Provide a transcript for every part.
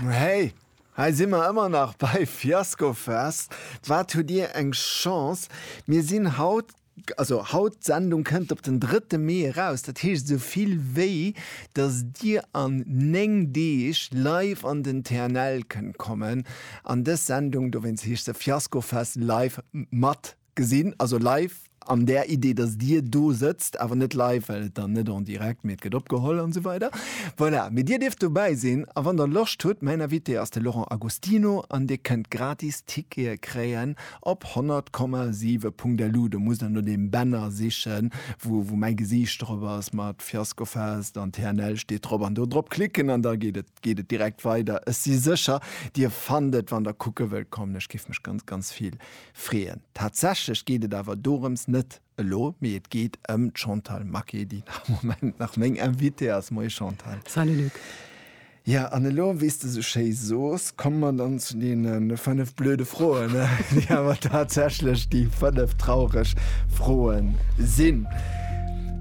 Hey, hei si mer ëmmer nach bei Fiaskofest. Wat hutt Dir eng Chance, mir sinn haut, also haut, d'Sendung kënnt op den drëtte Mee eraus, dat heescht esou vill wéi datt Dir an néng Deeg live an den TNL kënnt kommen an dës Sendung, dowéinst heescht se Fiaskofest live, mat Gesinn, also live an där Idee, dass Dir do sëtzt, awer net live, well et dann net en direct, mee et gëtt opgeholl an esou weider. Voilà, mee Dir dierft dobäi sinn a wann Der Loscht hutt, mäin Invité ass de Laurent Agostino an Dir kënnt gratis Tickete kréien op 100,7.lu. Do musst Der no deem Banner sichen, wou wou mäi Gesiicht drop ass mat Fiasco Fest an TNL steet drop an do drop klicken an da geet et geet et direkt weider. Ech si sécher, Dir fannt et, wann Der kucke wëllt kommen. Ech géif mech ganz, ganz vill Freeën. Tatsächlech geet et awer dorëms net elo, mee et geet ëm d'Chantal Maquet, déi am Moment nach meng Invitée ass. Moie Chantal. Salut Luc. Ja, an elo, wéi s de esou schéi soos, komme mer dann zu deene fënnef blöde Froen, déi awer tatsächlech déi fënnef traureg Froe sinn.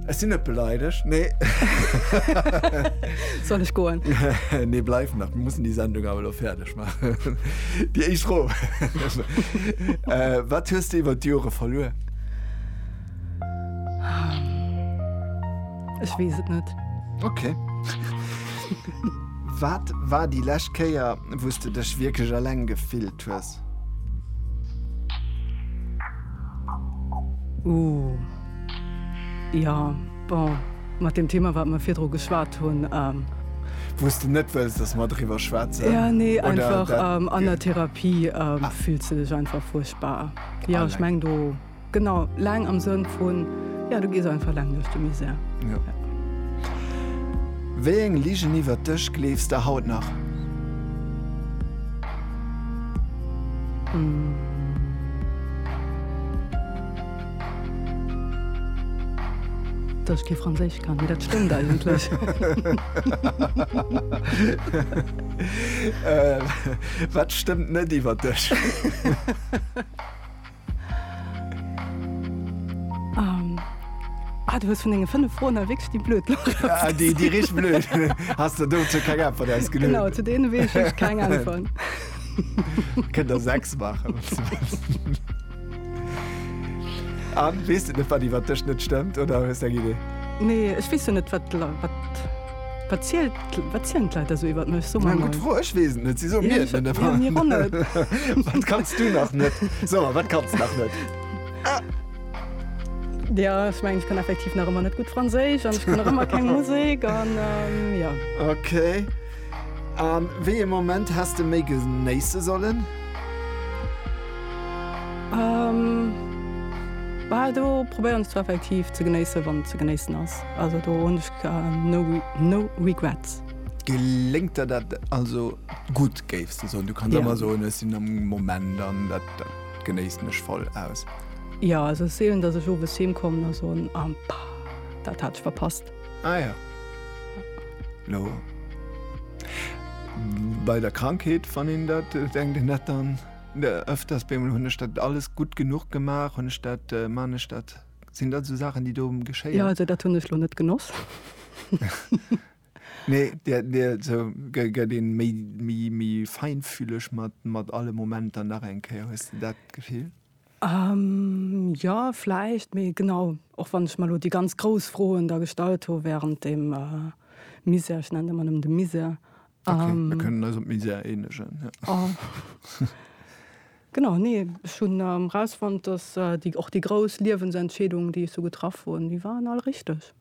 Ech sinn net beleidegt, nee. Soll ech goen? Nee, bleif nach, mir mussen déi Sendung awer elo fäerdeg. Déi éischt Fro. Wat hues de iwwer d'Jore verluer? Ech weess et net. Ok. Wat war déi lescht Kéier, wou s de dech wierklech eleng gefillt hues? Ooh. Jo. Bon, mat deem Thema, wat mer virdru geschwat hunn. Wou s de net wëlls, dass mer driwwer schwätzen? Jo, nee, einfach an der Therapie fills de dech einfach fuerchtbar. Jo, ech mengen do, genau, laang am Sënn vun, jo, du gees einfach laang duerch de Misär. Jo. Wéi eng Ligen iwwert dech gleefs de haut nach? Dass ech kee Franséisch kann, mee dat stëmmt eigentlech. Wat stëmmt net iwwer dech? Du hues vun denge fënnef Froen hei wierklech déi blöd lass. Déi richteg blöd. Has de dozou keng Äntwert ausgeluecht? Genau, zu deene weess ech keng Äntwert. Kënnt der sechs maachen. Anne, weess de net, wat iwwer dech net stëmmt, oder hues de eng Idee? Nee, ech weess jo net, wat d'Leit, wat, wat zielt, wat zielen d'Leit da sou iwwer mech? So mal. Eng gutt Fro, ech weess et net, si soe mir et net. Ja, mir och net. Wat kanns du nach net? So, wat kanns nach net? Ja, ech mengen, ech kann effektiv nach ëmmer net gutt Franséisch an ech kann nach ëmmer keng Musek an, ja. Okay. A wéi ee Moment häss de méi genéisse sollen? Bal do probéieren ech zwar effektiv ze genéissen, wann et ze genéissen ass. Also do hunn ech no regrets. Geléngt der dat also gutt, géifs de soen? Du kanns ëmmer soen, ech sinn am Moment an dat genéissen ech voll aus. Jo, also et si eben, datt ech owes heem kommen a soen, Ah, dat hat ech verpasst. Ah ja. Lo. Bei der Krankheet wann een dat äh, denkt den net dann äh, öfters bemol hunn ech dat alles gut genug gemaach, hunn ech dat äh, man ech dat sinn dat so Sachen, déi do geschéien. Ja also dat hunn ech lo net genoss. Nee, der, der, so, gëtt een méi, méi, méi feinfühleg mat, mat alle Momenter nach eng Kéier. Hues du dat Gefill? Jo, vläicht. Mee genau, och wann ech mer elo déi ganz grouss Froen da gestallt hu wärend deem Misär, ech nennen et ëmmer nëmmen de Misär, Okay, mir kënnen eis op Misär eenegen, jo. Genau, nee, ech hunn erausfonnt, dass déi, och déi grouss Liewensentscheedungen, déi ech sou getraff hunn, déi waren all richteg.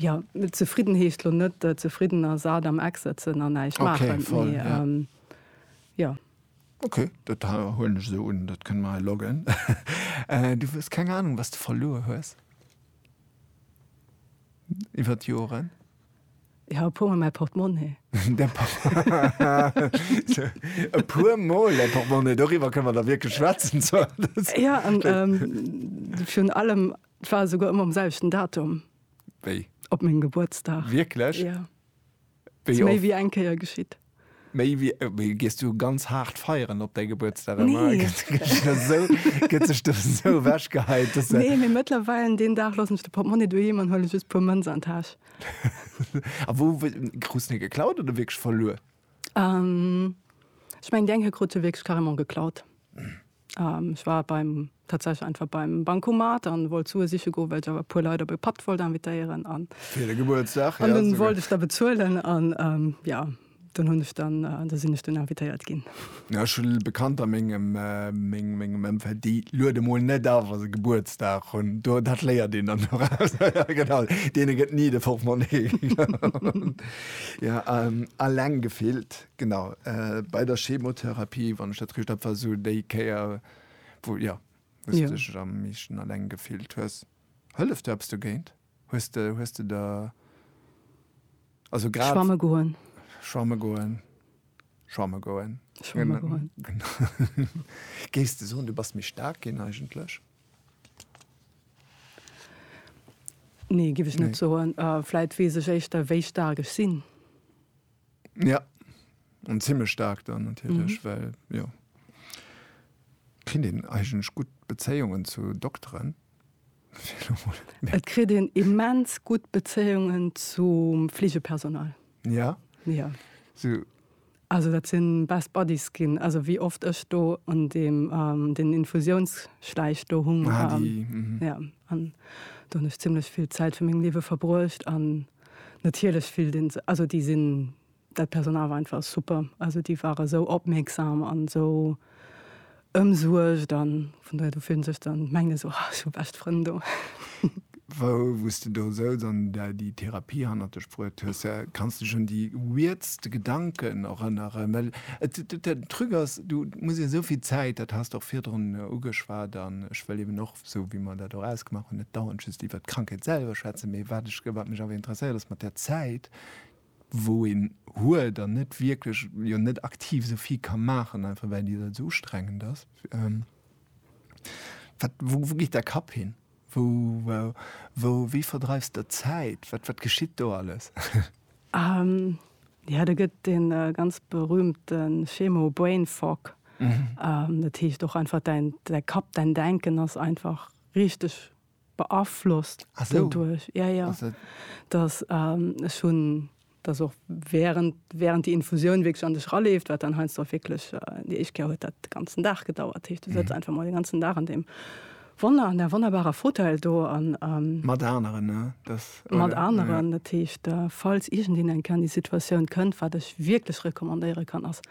Ja, zefridden heescht lo net zefridden a sat am Eck sëtzen a näischt maachen, mee jo. Ok, dat huelen ech esou un, dat kënne mer hei loggen. Du hues keng Anung, wat s de verluer hues iwwer d'Joren? Jo, e puermol mäi Portemonnaie. E puermol däi Portemonnaie, doriwwer kënne mer da wierklech schwätzen. Jo, an virun allem Et war esouguer ëmmer um selwechten Datum. Wéi? Op mengem Gebuertsdag. Wierklech? Ja. Wéi Ass méi oft? wéi eng Kéier geschitt. Méi wéi, wéi gees du ganz haart feieren op däi Gebuertsdag ëmmer? Nee. Gëtt gëtt sech dat esou, gëtt sech dat esou ewech geheit, dass de. Nee, mee mëttlerweil an deen Dag loossen ech de Portmonni doheem an huele just puer Mënz an d'Täsch. A wou w krus de geklaut oder wierklech verluer? Ähm, ech mengen déi eng hei krut se wierklech carrément geklaut. Ech war beim, tatsächlech einfach beim Bancomat an wollt Sue siche goen, well ech awer e puer Leit op e Patt wollt invitéieren an. Fir de Gebuertsdag, ja. An dunn wollt ech da bezuelen an, ja, dunn hunn ech dann, da sinn ech dunn invitéiert ginn. Ja, ech hu Bekannter a mengem, mengem Ëmfeld, déi luede mol net a wa se Gebuertsdag hunn. Do, dat léiert een dann doraus. Ja, genau, deene gëtt ni de Portmonni. Ja, alleng gefillt. Genau, bei der Chemotherapie, wann ech dat richt hab, war sou déi Kéier, wou, jo, wou s de dech am meeschten alleng gefillt hues. Hëlleft do eppes dogéint? Hues de, hues de der, also grad. Schwamme goen. Schwamme goen. Schwamme goen. Schwamme goen. Géifs de soen, du bass méi staark ginn eigentlech? Nee, géif ech net soen. Vläit weess ech éischter, wéi staark ech sinn. Ja an zimmech staark dann natierlech, well jo kritt een eigentlech gutt Bezéiungen zu Dokteren, fir elo mol et. Et kritt een immens gutt Bezéiungen zum Fleegepersonal. Ja? Ja. Sou. Also dat sinn best buddies ginn, also wéi oft ech do an deem den Infusiounsschläich do hung. Ah déi, mhm. Ja an do hunn ech zimmlech vill Zäit vu mengem Liewe verbruecht an. Natierlech fillt een sech, also déi sinn, dat Personal war einfach super, also déi ware esou opmierksam an esou ëmsuergt an vun dohier, du fills sech dann, mengt een esou, ech hu bescht Frënn do. Wou s de do souz an der déi Therapie hannert dech bruet hues, kanns dech un déi weirdste Gedanken erënneren? Well et, den Truc ass, du muss esou vill Zäit, dat has de och virdrun ugeschwat an ech wëll eben och, esou wéi mer dat och ausgemaach hunn, net dauernd just iwwert d'Krankheet selwer schwätzen, mee wat ech, wat mech awer interesséiert ass mat där Zäit, wou een huet an net wierklech, jo net aktiv esou vill ka maachen, einfach well déi Zäit esou ustrengend ass, wat, wou, wou geet däi Kapp hin? Wou, wou, wéi verdreifs de d'Zäit? Wat, wat geschitt do alles? Jo, do gëtt dee ganz berühmte Schemo Brain Fog. Dat heescht och einfach däin Kapp, däin Denken ass einfach richteg beaflosst doduerch. Jo, jo. Dass ech hunn, dass och während, während déi Infusioun wierklech an dech raleeft, wat dann heiansdo och wierklech, déi éischt Kéier huet dat de ganzen Dag gedauert. Dat heescht, du sëtz einfach mol den ganzen Dag an deem. Wonner an där wonnerbarer Fauteuil do an. Mat aneren, ne? Dass, oder? Mat aneren. Dat heescht, falls iergendeen eng Kéier an déi Situatioun kënnt, wat ech wierklech recommandéiere kann, ass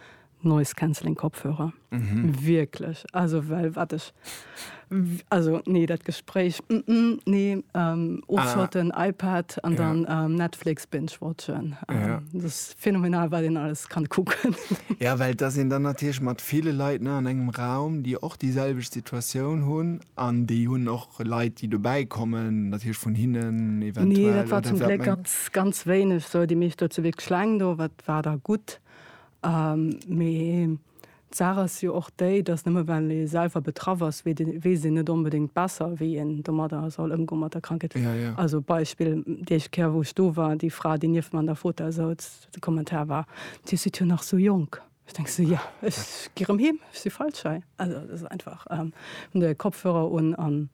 Noise Cancelling Kopfhörer. Wierklech. Also, well wat ech, also, nee, dat Gespréich, nee, ofschotten, iPad an dann Netflix binge-watchen. Dat ass. Phänomenal wat een alles kann kucken. Jo well et ass een dann natierlech mat ville Leit ne an engem Raum déi och déi selwecht Situatioun hunn an déi hunn och Leit déi dobäi kommen natierlech vun hinnen eventuell. Nee dat war zum Gléck ganz ganz wéineg sou déi meescht do zu Wierkleng do wat war da gutt mee. D'Saach ass jo och déi, dass nëmme well ee selwer betraff ass, weess een net onbedéngt besser, wéi een domadder soll ëmgoen, mat der Krankheet. Also Beispill, déi éischt Kéier, wou ech do war, déi Fra, déi nieft mer an der Fota souz, de Kommentar war, Dir sidd jo nach sou jonk. Ech denke sou, Jo, ech gi rëm heem, ech si feilschei. Also et ass einfach, hunn de Kopfhörer un an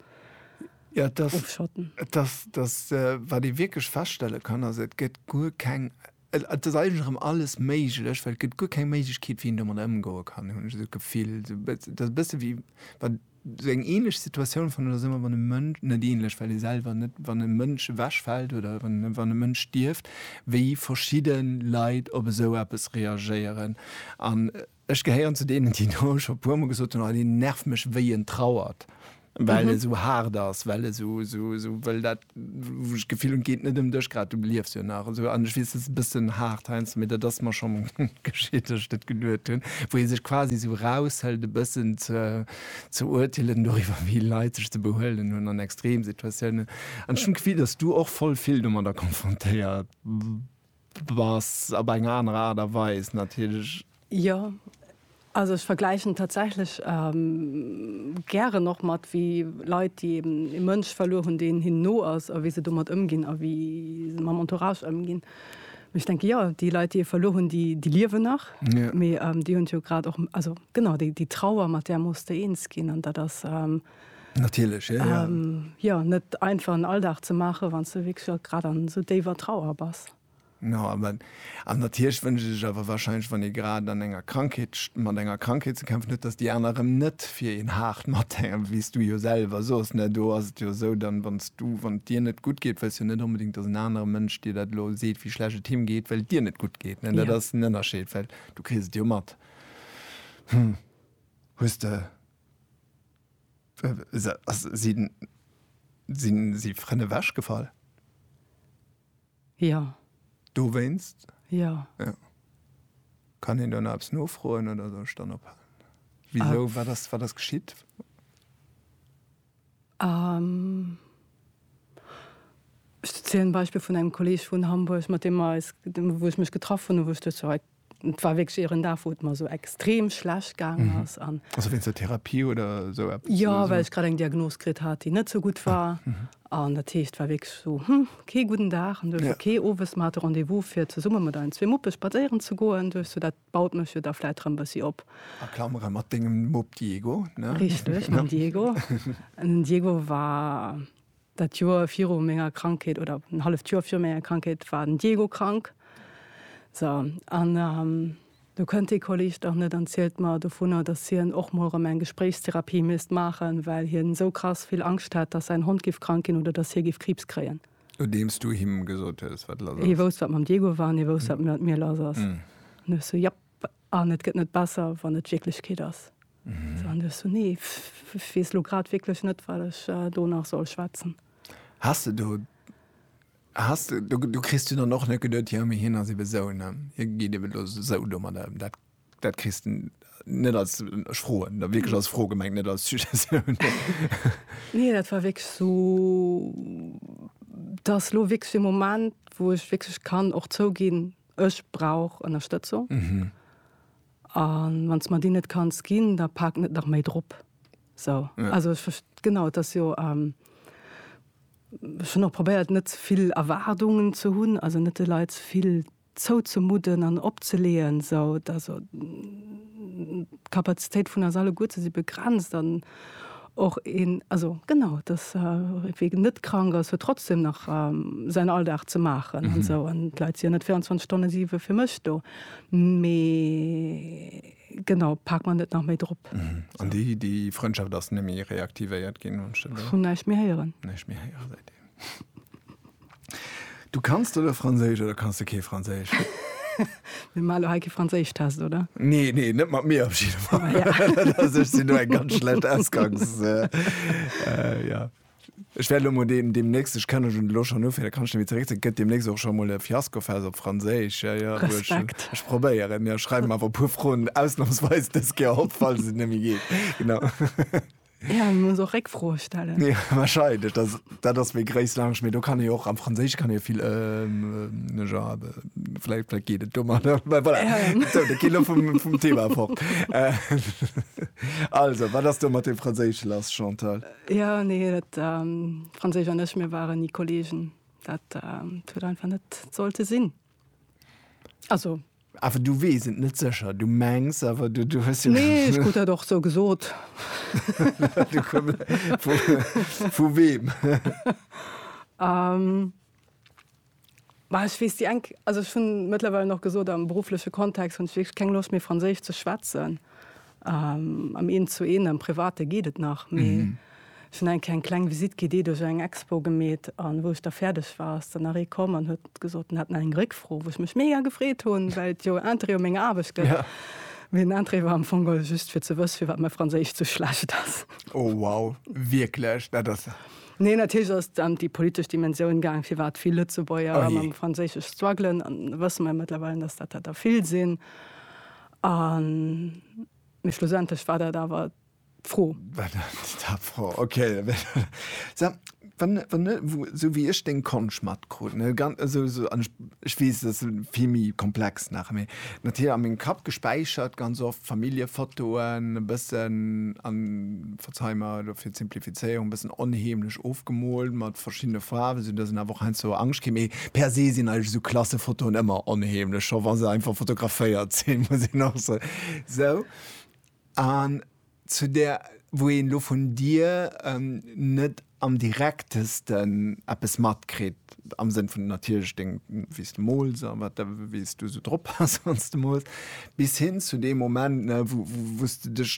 ofschotten. Jo, et ass, wat ee wierklech feststelle kann, ass, Et gëtt guer keng. Et ass eigentlech erëm alles méiglech, well et gëtt guer keng Méiglechkeet, wéi een domadder ëmgoe kann, hunn ech esou d'Gefill. Et ass e bësse wéi wann, esou eng änlech Situatioun fannen ech dat ëmmer, wann e Mënsch, net änlech, well ee selwer net, wann e Mënsch ewechfält oder wann e Mënsch stierft, wéi verschidde Leit op esou eppes reagéieren. An Ech gehéieren zu deenen, déi do scho e puermol gesot hunn, oh deen nervt mech wéi en trauert, well e sou haart ass, well e sou, sou, sou wëll dat, wou ech d'Gefill hunn, et geet net ëm dech grad, du liefs jo nach esou. An ech weess, dat ass e bëssen haart heiansdo, mee dat ass mer scho geschitt, datt ech dat geduet hunn, wou ee sech quasi esou eraushëlt e bëssen ze, ze urteelen doriwwer, wéi Leit sech ze behuelen hunn an Extremsituatiounen. An ech hunn d'Gefill, datt s du och voll vill domadder konfrontéiert Bass op eng aner Aart a Weis natierlech. Jo, also ech vergläichen tatsächlech gären och mat wéi Leit, déi eben e Mënsch verluer hunn, deen hinnen no ass a wéi se domat ëmginn a wéi se mam Entourage ëmginn. Mee ech denke jo, déi Leit, déi ee verluer hunn, déi liewen nach, mee déi hunn et jo grad och, also genau déi Trauer, mat där muss de eens ginn an dat ass. Natierlech, ja, ja. An net einfach en Alldag ze maachen, wann s de wierklech och grad an esou déiwer Trauer bass. No, awer, an natierlech wënscht ee sech awer wahrscheinlech, wann ee grad an enger Krankheet, mat enger Krankheet ze kämpfen huet, datt déi aner erëm net fir een haart mathänken, wéi s du jo selwer sos, ne? Do ass et jo esou, dann, wann s du, wann et dir net gutt geet, wëlls jo net onbedéngt, datt en anere Mënsch dir dat elo seet, wéi schlecht et him geet, well et dir net gutt geet, ne? Dat ass den Ënnerscheed, well du kriss et jo mat. Hm, hues de. Sinn si frënn ewech gefall? Jo. Dowéinst? Jo. Kann een do nach eppes nofroen oder soll ech dann ophalen? Wisou? Wat ass geschitt? Ech zielen en Beispill vun engem Kolleg vun Hamburg, mat deem mer eis, wou ech mech getraff hunn, wou ech duecht scho, et war wierklech ieren Dag, wou et mer esou extrem schlecht gaangen ass an. Also wéinst der Therapie oder esou eppes? Jo, well ech grad eng Diagnos kritt hat, déi net sou gutt war. An dat heescht, et war wierklech esou, hm, kee gudden Dag. An duecht ech, ok, owes, mer hate Rendez-vous fir zesumme mat eisen zwee Muppe spadséieren ze goen. Duecht ech, dat Baut mech jo da vläit rëm bëssi op. A Klamere mat dengem Mupp Diego, ne? Richteg, mam Diego. Den Diego war dat Joer viru menger Krankheet, oder en halleft Joer viru menger Krankheet war den Diego krank. So, an do kënnt dee Kolleg dach net an zielt mer dovunner, dass hien och mol rëm eng Gespréichstherapie misst maachen, well hien esou krass vill Angscht hätt, dass säin Hond giff krank ginn oder dass hie giff Kriibs kréien. Nodeems du him gesot hues, wat lass ass. Hie wousst, wat mam Diego war, an hie wousst, wat mat mir lass ass. An du hues sou, Japp. An et gëtt net besser, wann et d'Wierklechkeet ass. An du hues sou, Nee, ech weess elo grad wierklech net, wat ech do nach soll schwätzen. Has de do, has de do, do kriss du dann och net geduet, Jo, mee hien ass ebe sou, ne? Hie geet ebe lo sou domadder ëm. Dat. Dat kriss de net als, ech froen da wierklech als Fro gemengt, net als Suggestioun. Nee, dat war wierklech esou, dat ass elo wierklech e Moment, wou ech wierklech kann och zouginn, ech brauch Ënnerstëtzung. A wann s de mer déi net kanns ginn, da pak net nach méi drop. Esou, also ech verst-, genau, et ass jo, ech hunn och probéiert, net ze vill Erwaardungen ze hunn, also net de Leit ze vill. zouzemudden an opzeleeën, esou dass d'Kapazitéit vun eis alleguer, se si begrenzt an och een, also genau, dass wee net krank ass, huet trotzdem nach säin Alldag ze maachen an esou an d'Leit si jo net 24 Stonne siwe fir mech do. Mee genau, pak mer net nach méi drop. An déi Frëndschaft ass net méi reaktivéiert ginn? Ech hunn näischt méi héieren. Näischt méi héieren seitdeem. Du kanns de lo Franséisch oder kanns de kee Franséisch? Mir maache lo hei kee Franséischtest, oder? Nee, nee, net mat mir op jidde Fall. Ah, ja. Also, ech sinn do eng ganz schlecht Ausgangs. Äh, äh, ja. Ech wäert lo mol deem, demnächst, ech kann schon lo schon ufir, da kann ech demi zeréck, gëtt demnächst och schon mol e Fiaskofest op Franséisch. Ja, ja, du, ech, Respekt. ech probéieren. Ja, schreiw mer awer e puer Froen ausnahmsweis dës Kéier op, falls et net méi geet. Genau. Ja, mir muss och Réckfroe stellen. Ja, wahrscheinlich. Das, das ist mir gréis lang. Mir do kann ich auch am Französisch kann ich viel ähm, ne ja, vielleicht, vielleicht geht es dummer. Voilà. Ähm. So, da geht vom, vom Thema fort. Äh, also, was hast du mit dem Französisch lass, Chantal? Äh, ja, nee, das ähm, Französisch und ich, wir waren nie Kollegen. Das ähm, tut einfach nicht sollte sinn. Also. Awer du weess et net sécher. Du mengs awer, du, du hues jo. Nee, ech krut dat och sou gesot. vu, vu weem? um. Bah, ech weess déi eng, also ech hunn mëttlerweile nach gesot, am beruffleche Kontext hunn ech wierklech keng Loscht méi Franséisch ze schwätzen. Am Eent zu Eent, am Private geet et nach, mee ech hunn eng Kéier eng kleng Visitt gi, déi duerch eng Expo gemeet. An wou ech da fäerdeg war, ass dann nach ee komm an huet gesot, en hätt nach eng Réckfro, wou ech mech mega gefreet hunn, well et jo Interêt u menger Aarbecht gëtt. Mee den Interêt war am Fong geholl just, fir ze wësse firwat mäi Franséisch sou schlecht ass. Oh wow, wierklech? Dat ass. Nee, natierlech ass et ëm déi politesch Dimensioun gaang, firwat vill Lëtzebuerger mam Franséisch struggelen. An da wësse mer jo mëttlerweil, dass dat der vill sinn. A mee schlussendlech war dat awer d'Fro. War dat d'Fro, ok. Sag, wann, wann, esou wéi ech deng Konsch matkrut, ne, ganz, also, also, an ech, ech weess, dat ass vill méi komplex nach, mee natierlech a mengem Kapp gespäichert ganz oft Familljefotoen e bëssen an. Ech hu mer elo fir d'Simplifizéierung e bëssen onheemlech ofgemoolt mat verschiddene Faarwen, esou datt een awer och heiansdo Angscht kritt. Mee per se sinn eigentlech esou Klassefotoen ëmmer onheemlech, scho wa se einfach fotograféiert sinn, muss een och soen. Sou, an zu där, wou een elo vun dir net am direktesten eppes matkritt, am Sënn vun natierlech deng, wéi s de mools a wat, wéi s du esou drop bass, wann s de mools, bis hin zu deem Moment, wou s de dech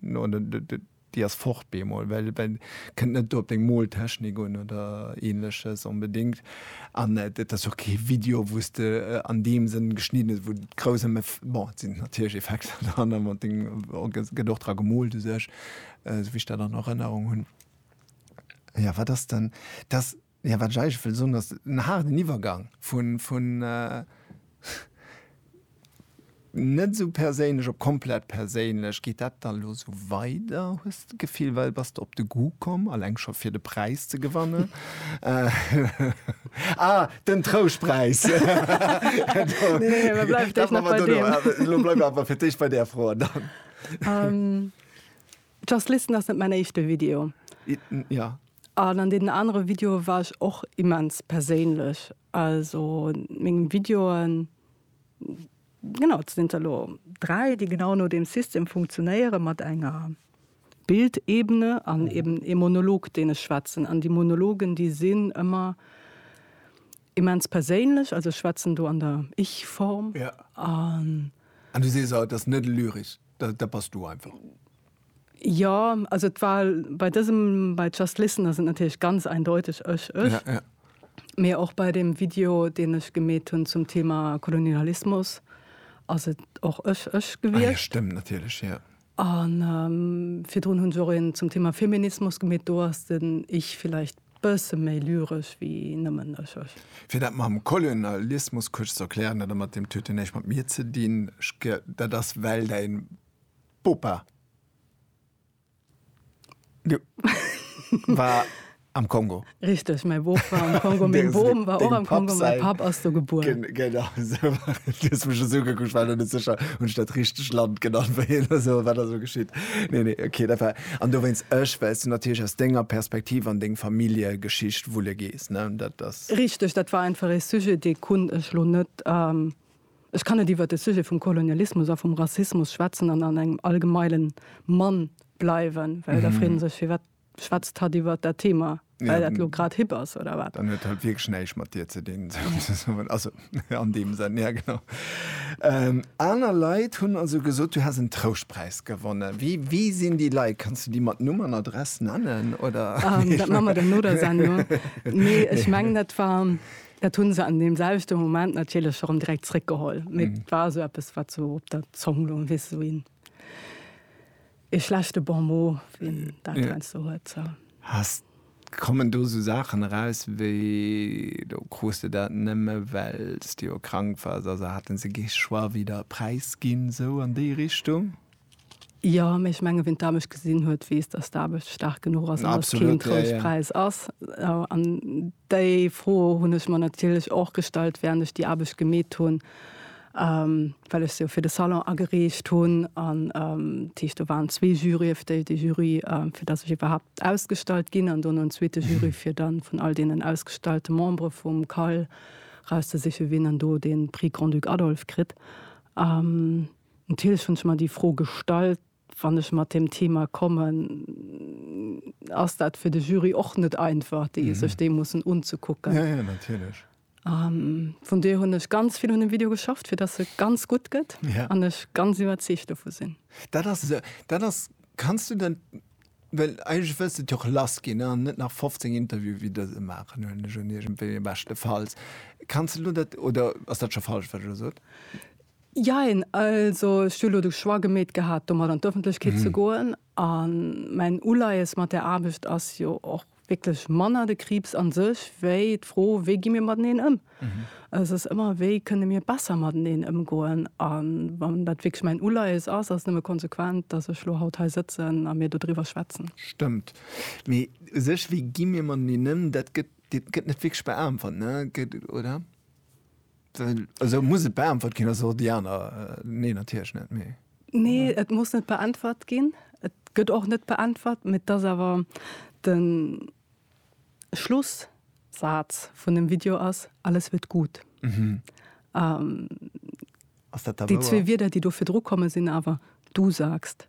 No, déi ass fort bemol, well kënnt net do op deng Moltechnik un oder Ähnleches onbedéngt. An et ass jo och kee Video, wou s de an deem Sënn geschnidden hues, wou et grouss ëm, bon, et sinn natierlech Effekter dran an et gëtt och dra gemoolt u sech, esou wéi ech dat an Erënnerung hunn. Jo, wat ass dann, dass. Jo, wat ech eigentlech wëll soen ass, en haarden Iwwergang vun net esou perséinlech op komplett perséinlech. Geet dat dann elo esou weider, hues de d'Gefill, well bass de op de Goût komm, alleng scho fir de Präis ze gewannen? Ah, den Trouschtpräis! Elo bleiwe mer awer fir d'éischt bei där Fro. Just Listen ass net mäin éischte Video. Ja. An an deenen anere Videoe war ech och immens perséinlech. Also meng Videoen, genau, et sinn der elo dräi, déi genau no deem System funktionéieren, mat enger Bildebene an eeben ee Monolog, deen ech schwätzen. An déi Monologen, déi sinn ëmmer Immens perséinlech, also ech schwätzen do an der Ich-Form. An. An du sees haut, dat ass net lyrisch, dat dat bass du einfach. Jo, also et war bei dësem, bei Just Listen ass et natierlech ganz eindeuteg ech, ech. Ja, ja. Mee och bei deem Video, deen ech gemeet hunn zum Thema Kolonialismus, ass et och ech, ech gewiescht. Ah ja, stëmmt natierlech, jo. A virdrun hunn se och een zum Thema Feminismus gemeet. Do ass den Ich villäicht bësse méi lyresch ewéi nëmmen ech, ech. Fir dat mam Kolonialismus kuerz ze erklären, dat ëmmer deem t huet jo näischt mat mir ze dinn, ech ge, dat ass well däin Bopa, jo, war. Am Kongo. Richteg, mäi Boob war am Kongo. Meng Bom war och am Kongo, mäi Papp ass do gebuer. Genau esou. Du hues mech esou ugekuckt, ech war elo net sécher, hunn ech dat richteg Land genannt wéi hien da sou, wat ass elo geschitt? Nee, nee, okay, dat war. An dowéinst ech, well s du natierlech aus denger Perspektiv an deng Familljegeschicht wulle gees, ne? Dat ass. Richteg, dat war einfach ee Sujet, dee konnt ech elo net, ech kann net iwwer de Sujet vum Kolonialismus a vum Rassismus schwätzen an an engem allgemeile Mann bleiwen, well da freet ee sech, firwat. Schwätzt hatt iwwert dat Thema, well dat elo grad hip ass, oder wat? Dann huet hatt wierklech näischt mat dir ze dinn, souzesoen. Also, an deem Senn, ja, genau. Aner Leit hunn also gesot, du häss en Trouschtpräis gewonnen. Wie, wie sinn déi Leit? Kanns du déi mat Numm an Adress nennen, oder? Dat maache mer dann no der Sendung. Nee, ech mengen, dat war, dat hu se an deem selwechte Moment natierlech erëm direkt zréckgeholl. Mee et war esou eppes, wat sou op der Zong loung, weess esou een. Ee schlechte Bon mot, wien dat heiansdo huet. Haas, kommen do esou Saachen eraus wéi, do krus de dat nëmme well s de jo krank wars, also hate se kee Choix wéi der e Präis ginn, sou an déi Richtung? Jo, mee ech menge wien d'Aarbecht gesinn huet, weess, datt d'Aarbecht staark genuch ass an datt et keen Trouschtpräis ass. An déi Fro hunn ech mer natierlech och gestallt, wärend ech déi Aarbecht gemeet hunn. well ech se jo fir de Salon agereecht hunn an dat heescht do waren zwee Juryë, déi de Jury fir datt ech iwwerhaapt ausgestallt ginn an dono en zweete Jury fir dann vun all deenen ausgestallte Membere vum CAL rauszesiche wien dann do dee Prix Grand-Duc Adolphe kritt. Natierlech hunn ech mer déi Fro gestallt, wann ech mat deem Thema kommen, ass dat fir de Jury och net einfach, déi sech dee mussen unzekucken. An vun duer hunn ech ganz vill un dem Video geschafft, fir dass e ganz gutt gëtt an ech ganz iwwerzeegt dovu sinn. Dat ass esou, dat ass, kanns du dat, well eigentlech wëlls de et jo och lass ginn an net nach 15 Interview wéi dëse maachen, huelen ech un, iergendwéi, beschtefalls. Kanns de elo dat, oder ass dat scho falsch, wat ech elo sot? Jein, also ech hu elo de Choix gemeet gehat, domat an d'Ëffentlechkeet ze goen A mäin Uleies mat där Aarbecht ass jo och wierklech manner de Kriibs a sech, wéi d'Fro, wéi gi mir mateneen ëm? S ass ëmmer, wéi kënne mir besser mateneen ëmgoen? A wann dat wierklech mäin Uleies ass, ass et nëmme konsequent, datt ech elo haut hei sëtzen a mir dodriwwer schwätzen. Stëmmt. Mee u sech, wéi gi mir mateneen ëm, dat gëtt net wierklech beäntwert, oder? Esou muss et beäntwert ginn ass och déi aner nee natierlech net méi. Nee, et muss net beäntwert ginn. Et gëtt och net beäntwert, mee dass awer de Schlussaz vun dem Video ass, Alles wird gut. Mhm. Ass dat da wouer? Déi zwee Wierder, déi do virdru komme sinn awer, Du sagst.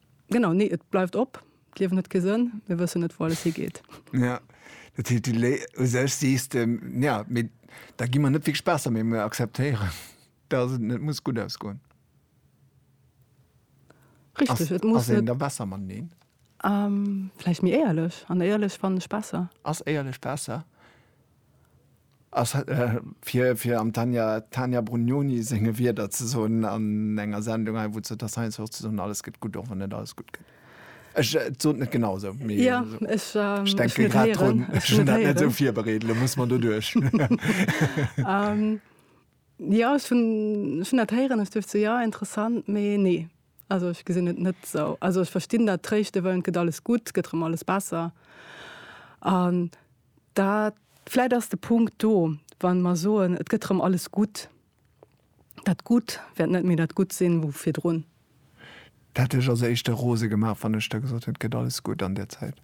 Genau, nee, et bleift op. D'Liewen huet kee Sënn, mir wëssen net, wou alles higeet. Ja, dat heescht, du lé u sech sees de, ja, mee da gi mer net wierklech besser, mee mir akzeptéieren, dass et net muss gutt ausgoen. Richtig, et muss net. Ass een da besser mateneen? Vläicht méi éierlech, an éierlech fannen ech besser. Ass éierlech besser? Ass fir fir am Tanja Tanja Brugnoni senge Wierder ze soen an enger Sendung hei wou zur der Science fir och ze soen alles gëtt gutt och wann net alles gutt gëtt. Ech et sot net genau esou mee Ja, esou. ech Ech ech denke wëllt grad héieren, drun. ech Ech hunn wëllt dat net esou héieren. virbereet, elo muss mer doduerch. Ähm, jo, ech hunn ech hunn dat héieren, ech duecht esou, jo, interessant, mee nee. Also ech gesinn et net esou. Also ech verstinn dat, tréischte wëllen, et gëtt alles gutt, et gëtt erëm alles besser an Da vläit ass de Punkt do, wa mer soen, et gëtt erëm alles gutt, dat Gutt wäert net méi dat Gutt sinn wou virdrun. Dat hätt lech als Éischte rose gemaach, wann ech da gesot hätt, et gëtt alles gutt an där Zäit?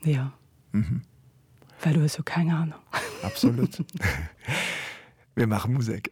Jo. Mhm. Well du hues jo keng aner. Absolut. Mir maache Musek.